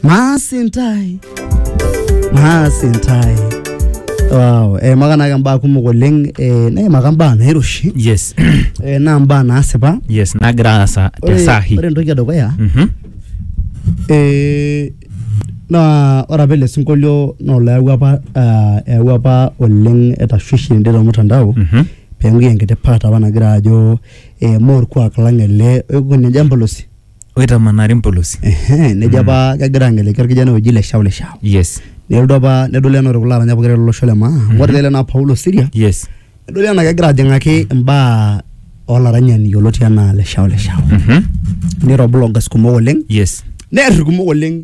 maasintai maasintai wow eh, makanake mbaa kumok oleng eh, neimaka mbaa nairoshi yes eh, naa mbaa naasipa yes nagira aasa te Ore- sahi ore entoki edukuya Mhm. eh, naa ore apa ele sinkolio naa olayawua apa ah, eyawua apa oleng etashwishi ende tormutandao Mhm. pengui enkiti part apa nagira ajo eh, moo orkuak lang ele oikunye jambo losi oitamanari mpolosi Ehe, nejo apa kegira angeleki orkijanai oji le Shaule Shao. yes Nelotu apa nedoli enaa ore kulo aranya pokira lolosho le maa. Amu ore ele naa Paulo Siria, yes nedoli enaa kegira ajing'aki imbaa olaranyani yioloti enaa le Shaule Shao. Mhm. Niro bloggers kumok oleng, yes near irkumok oleng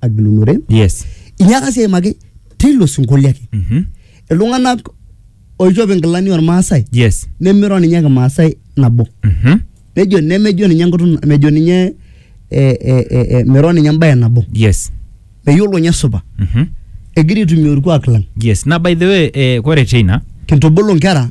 agilunore yes inyiaka sii aimaki teilo sinkolio ake Mhm. iltung'anak oishop inkilani ormaasai yes nemiro ninye kimaasai nabo Mhm. nejo nemejo ninye enkutuk mejo ninye eh, eh, eh, eh, miro ninye embaye nabo yes meyiolo ninye supa Mhm. egira aitumia orkuak lang yes na by the way eh, kore china kintubulu nkera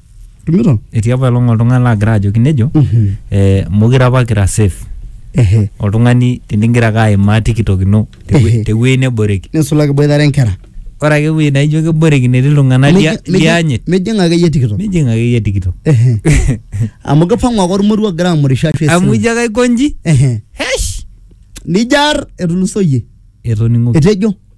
Tumito? etii apa elong oltung'ani laagira ajoki nejo Mhm. eh, mokire apa kira safe Ehe. oltung'ani tenigira ake aimaa tiktok ino tewe- Ehe. tewuei neboreki Nisulaki boitare nkera. ore ake ewuei naijo keboreki netii iltung'anak lia- Mijing- mijing- lianyit Mijing akeyie tikito. mijing akeyie tiktok Ehe. Amu kipang'u ake ormoruo ogira amurisho ashu amu esimu. ijo ake aikonji Ehe. hesh Nijar etulusoyie. etoning'oki Etejo.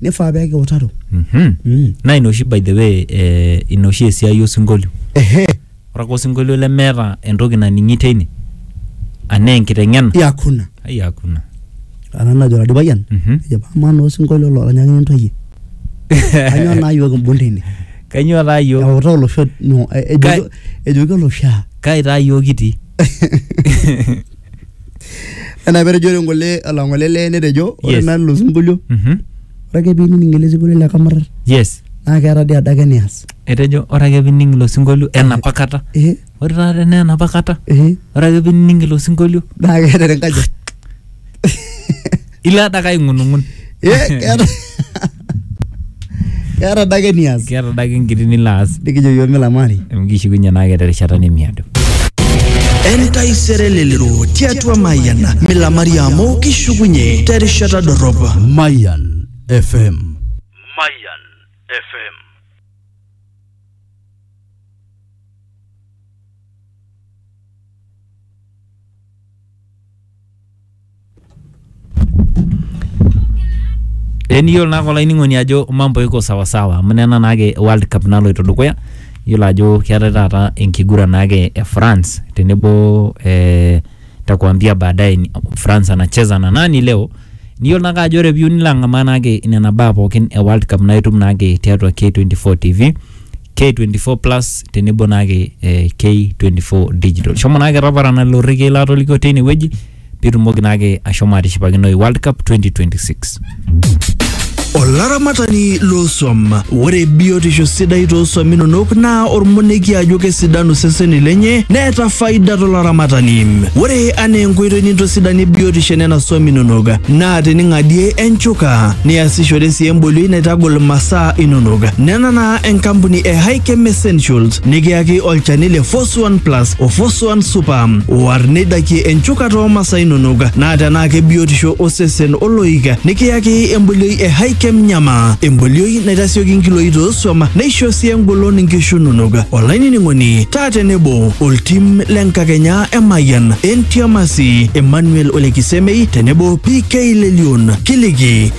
nifaa pee kiutaro Mhm. mm. naa ina oshi by the way eh, ina oshi esiai osinkolio ehe ore ake osinkolio lemeeta entoki naning'i teine anaa enkiteng'ena yakuna ai hakuna ana najo Ladi Payian Mhm. ejo amaa naa osinkolio loranyakini ntoyie kanyoo naa yiok imbung tine kainyoo taa yiok eutaa olosho no, e- ejoki- Kai- ejoki olosho aa kai taa yiok kitii Enaa petejore ngole olong'ole lee netejo ore Yes. naa lelo sinkolio Mhm. ore ake piinining ele sinkolio le Kamarrar yes naa keeta dii adake enias. etejo ore ake pining ilo sinkolio enapa kata Ehe ore taata enaa enapa kata ehe ore ake pining ilo sinkolio naa keeta enkaji. ilo adake aing'unung'un Eh keeta Keeta adake enias. keeta adake enkiti nilo aas Nikijo yiok milamari. amu kishukunye naake terishata nemiado entaisere lelero tiatua mayian milamari amu kishukunye terishata dorrop Mayan FM. Mayan FM. Teniyiolo naake olainining'oni ajo mambo iko sawasawa amu nena naake World Cup naloito dukuya, iyiolo ajo keetae taata enkiguran naake e France tenebo eh nitakuambia baadaye ni- France anacheza na nani leo niyiolo naake ajo ore piyieu nilo ang'amaa naake nena baa pookin e World Cup naa itum naake tiatua K24 TV K24 Plus tenebo naake eh, K24 Digital. Shomo naake taparana lelo rrekiei laatolikio teine wueji pitumoki naake ashomo atishipakinoi World Cup 2026. Olaramatani loosuam, ore biotisho sidai toosuam inonok naa ormoneki ajo kesidanu seseni lenye neeta faida tolaramatani. Ore anaa enkoitoi nintosidanie biotisho enena suam inonok naa tening'adie enchuka, niasishore sii embolioi naitagol masaa inonok. Nena naa enkampuni e Hikem Essentials nikiyaki olchani le Foswan Plus o Foswan Super oar neidakie enchukata oo masaa inonok naa tenaa kebiotisho osesen oloik nikiyaki embolioi e Hikem Nyama embolioi naitasioki nkiloi toosuam neisho sii engolon nkishu inonok olainining'oni taa tenebo oltim le nkakenya e Mayian Entiamasi Emmanuel Olekisemei tenebo PK Lelion kiliki